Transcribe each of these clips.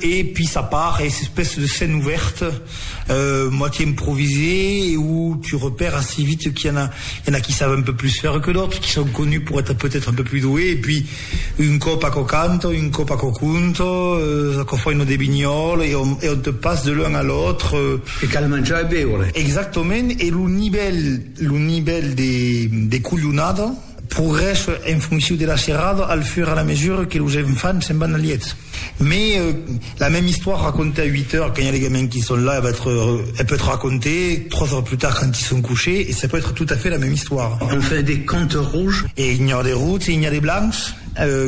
E pis a part es espèces de scène ouverte, moitié improvisées e où tu repères assez vite qu'il y en a, il y en a qui savent un peu plus faire que d'autres, qui sont connus pour être peut-être un peu plus doués et puis un còp aquò canta, un còp aquò conta, aquò fa una devinhòla e on e on te passe de l'un à l'autre. E cal manjar e beure. Exactament, e lo nivèl lo nivèl de de colhonada, Progrès en fonciu de la serrada al fur a la mesura que los enfants se'n van al liet. Me la mèm istòira racontée a 8 eur quand i a les gamins qui sont là, elle va être, elle peut être racontée 3 eur plus tard quand ils sont couchés et ça peut être tout à fait la mèm istòira. On fait des comptes rouges. E i a de routs e i a de blancs,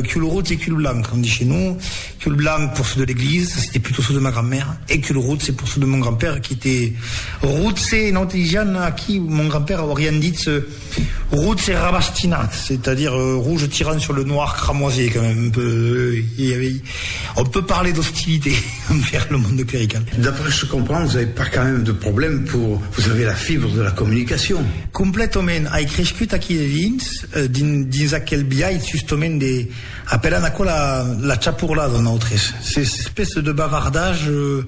cul rout e cul blanc, on dit chez nous. Cul blanc pour ceux de l'église, ça c'était plutôt ceux de ma grand-mère, e cul rout c'est pour ceux de mon grand-père qui était routse, nosaltres disián aquí mon grand-père aurián ditz, Routs e rabastinats, c'est-à-dire rouge tirant sur le noir cramoisé quand même, un peu, euh, on peut parler d'hostilité envers le monde clerical. D'après ce que je comprends, vous n'avez pas quand même de problème pour, vous avez la fibre de la communication. Completament, ai crescut aquí de dins, dins, dins aquel biais justament de, apèlan aquò la, la chapurlada, nosaltres, ces espèces de bavardage, euh,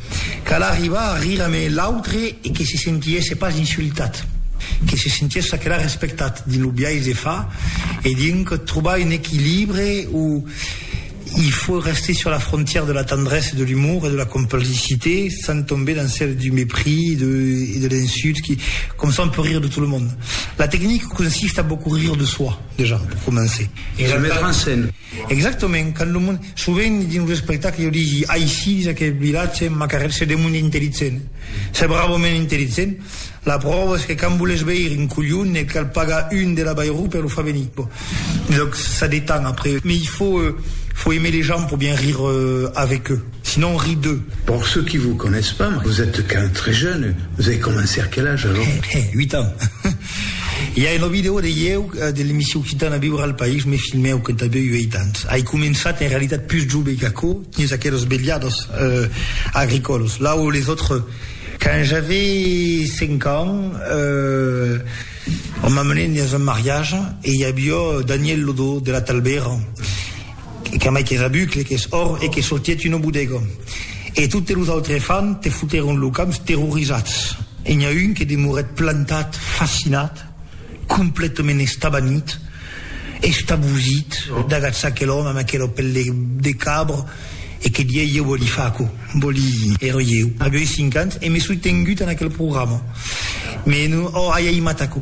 Cal arribar a rire amé l'autre e que se sentiesse pas insultat, que se sentiessa aquela respectat dins lo biais de far e dinc trobar un equilibre o il faut rester sur la frontière de la tendresse, de l'humour e de la complicité sans tomber dans celle du mépris e de l'insulte qui comme ça on peut rire de tout le monde. La technique consiste à beaucoup rire de soi déjà pour commencer e se mettre en scène. Exactament, quand lo monde, sovent dins los espectacles jo digi aicí dins aquel vilatge ma carrièra se demond intelligent, se bravament intelligent, la pròva es que quand voles veire un colhon ne cal pagar un de la Bayrou per lo far venir, bon, donc ça détend après, mais il faut faut aimer les gens pour bien rire avec eux, sinon on rit d'eux. Pour ceux qui vous connaissent pas, vous êtes quand même très jeune, vous avez commencé à quel âge alors? He he, 8 ans. I a una vidèo de ieu de l'emission Occitana viure al país me filmèu quand avèu uèit ans. Ai començat en realitat pus jove qu'aquò dins aqueles velhados agricòlos, là où les autres. Quand j'avais cinq ans, on m'amenèt dins un mariage e i avió Daniel Lodó de la Talbèra. Qu'an mai que rabucle, qu'es òr e que sortiet una bodega. E totes los autres fan te fotèron lo camp terrorizats. E n'i a un que demorèt plantat, fascinat, completament estabanit, estabosit, dagats aquel òme amb aquela pel de cabra e que dieis, Ieu vòli far aquò? Vòli èra ieu. Avèi cinc ans e me soi tengut en aquel programa. Me, oh, ai aimat aquò.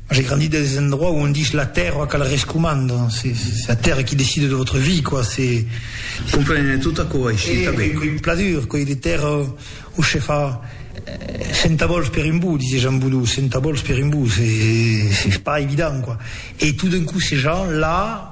J'ai grandi dans des endroits où on dit la terre qu'elle rescommande, c'est la terre qui décide de votre vie quoi, c'est. Comprene tot aquò aici tanben. Pla dur, coi de terra où se fa centavòls per un bou, disètz en vodou, centavòls per un bou, c'est pas évident quoi, e tout d'un coup ces gens là.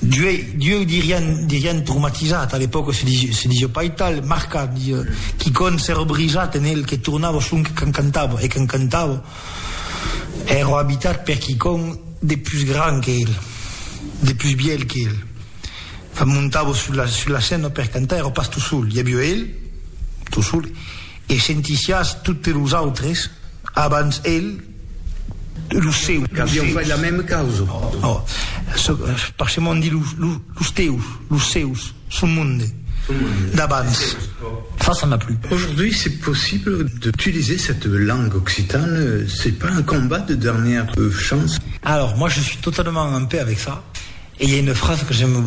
Dieu dirián, dirián traumatizat, a l'epòca se disiá pas tal, marcat, disiá, quicòm s'èra brisat en el que tornava sonque quand cantava, e quand cantava èra abitat per quicòm de pus grand que el, de pus bièlh que el. Quand montava sus la scèna per cantar èra pas tot sol, i aviá el, tot sol, E sentissiás totes los autres abans el, los seus. Qu'avián fait la mèma causa. Ò, parcemont di los teus, los seus, son monde d'abans. Ça, ça n'a plus. Aujourd'hui, c'est possible d'utiliser cette langue occitane, c'est pas un combat de dernière chance? Alors, moi, je suis totalement en paix avec ça, et il y a une phrase que j'aime beaucoup.